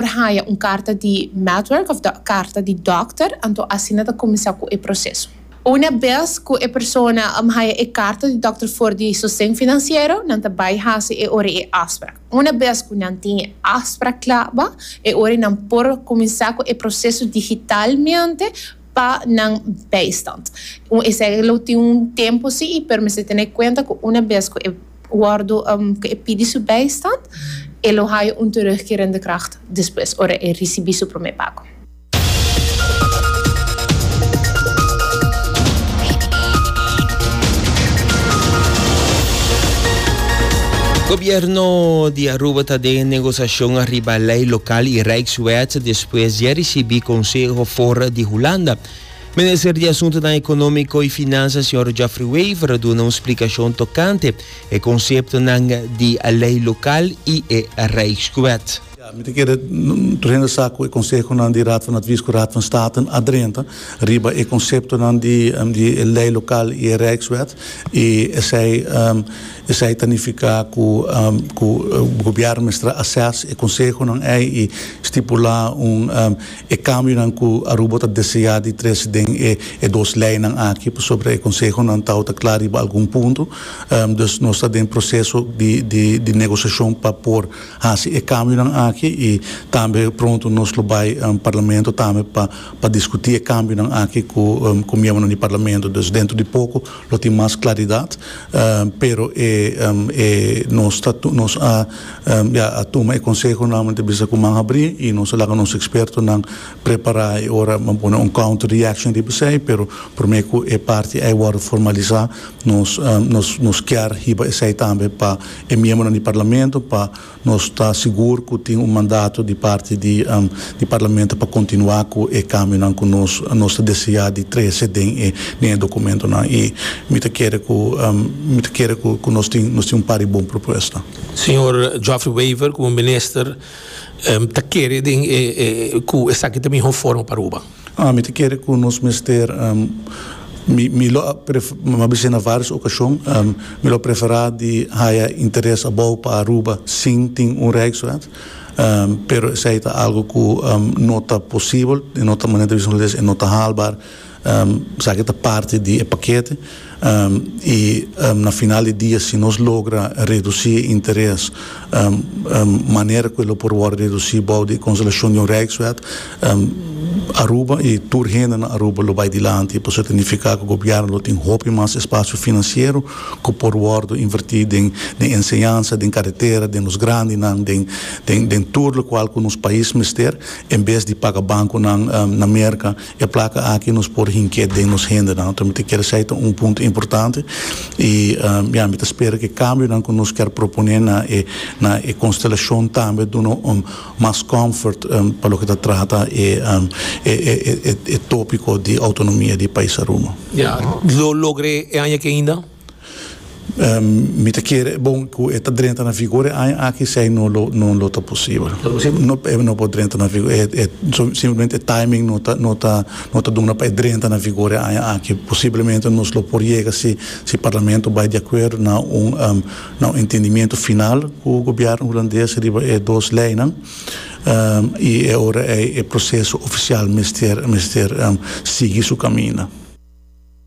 por haña un karta di Medwerk òf karta di dòkter, anto asina ta kuminsá ku e proseso. Una bes ku e persona haña e karta di dòkter for di sosten finansiero, nan ta bai hasi e ora e afsprak. Una bes ku nan tin e afsprak kla ba, e ora nan por kuminsá ku e proseso digitalmente pa nan bijstand. Un esèglo tin un tempu si, pero mester tene kuenta ku una bes ku e. Wòrdu ku e pidi su bèistan, e lo haya un terugkering di kracht despues, ora e risibí su promé pago. Gobierno di Aruba ta den negosiashon ariba lei lokal i Rijkswet despues di a risibí konseho for di Hulanda. Minister di Asuntunan Ekonómiko i Finansa señor Geoffrey Wever a duna un splikashon tokante e konseptonan di e lei lokal i e Rijkswet. Ja, mi ta kere tur hende sa ku e konsehonan di Raad van Advies ku Raad van Staten a drenta riba e konseptonan di di e lei lokal i e Rijkswet i esei esei ta nifiká ku ku gobièrnu mester a assess e konsehonan ei i stipulá un E kambionan ku Aruba ta deseá di trese den e dos leinan aki pasobra e konsehonan ta ota kla riba algun punto. Dus nos ta den proseso di negosiashon pa por hasi e kambionan aki i tambe pronto nos lo bai Parlamento tambe pa diskutí e kambionan aki ku miembronan di Parlamento. Dus dentro di poko Lo tin mas claridad, pero e nos ta nos a ya a tuma e conseho nuevamente bisa cu man habri y nos a laga nos expertonan prepara y ora a pone un counter reaction riba esey, pero prome cu e parti ey wordo formaliza nos nos nos kier hiba esey tambe pa e miembronan di Parlamento pa Nos ta sigur cu tin un mandato di parti di di Parlamento pa continua cu e cambionan cu nos nos ta desea di trece den e den e documentonan y mi ta kere cu mi ta kere cu cu nos tin nos tin un par di bon propuesta. Señor Geoffrey Wever como Minister ta kere den e e cu esaki ta miho forma pa Aruba. Mi ta kere ku nos mester, mi lo a bisa na vários okashon, mi lo a preferá di haya interes abou pa Aruba sin tin un reiswet, pero esei ta algu ku no ta posibel, no ta manera di bisa nos e no ta haalbaar, esaki ta parti di e pakete. I na final di dia si nos logra redusí e interes manera ku e lo por wòrdu redusí bou di e konsolashon di un rijkswet, Aruba i tur hende na Aruba lo bai dilanti. Pasobra ta nifiká ku gobièrnu lo tin hopi mas espasio finansiero ku por wòrdu invertí den enseñansa, den karetera, den nos grandinan, den tur lokual ku nos pais mester, en bes di paga bankunan na Merka. E plaka aki nos por hink'é den nos hendenan. Nos ta mester kere esei ta un punto importante i ya mi ta spera ku e kambionan ku nos ker proponé na e na e konstelashon tambe duna un mas comfort pa loke ta trata e e tópiko di outonomia di e pais Aruba. Lo logr'é e aña aki ainda? Mi ta kere e bon ku e ta drenta na vigor e aña aki si no lo no lo ta posibel. No ta posibel? Nop e no por drenta na vigor e e simplemente e timing no ta no ta no ta duna pa e drenta na vigor e aña aki posiblemente nos lo por yega si si parlamento bai di akuerdo na un na un entendimiento final ku gobièrnu hulandes riba e dos leinan i e ora ei e proseso ofisial mester mester sigui su kaminda.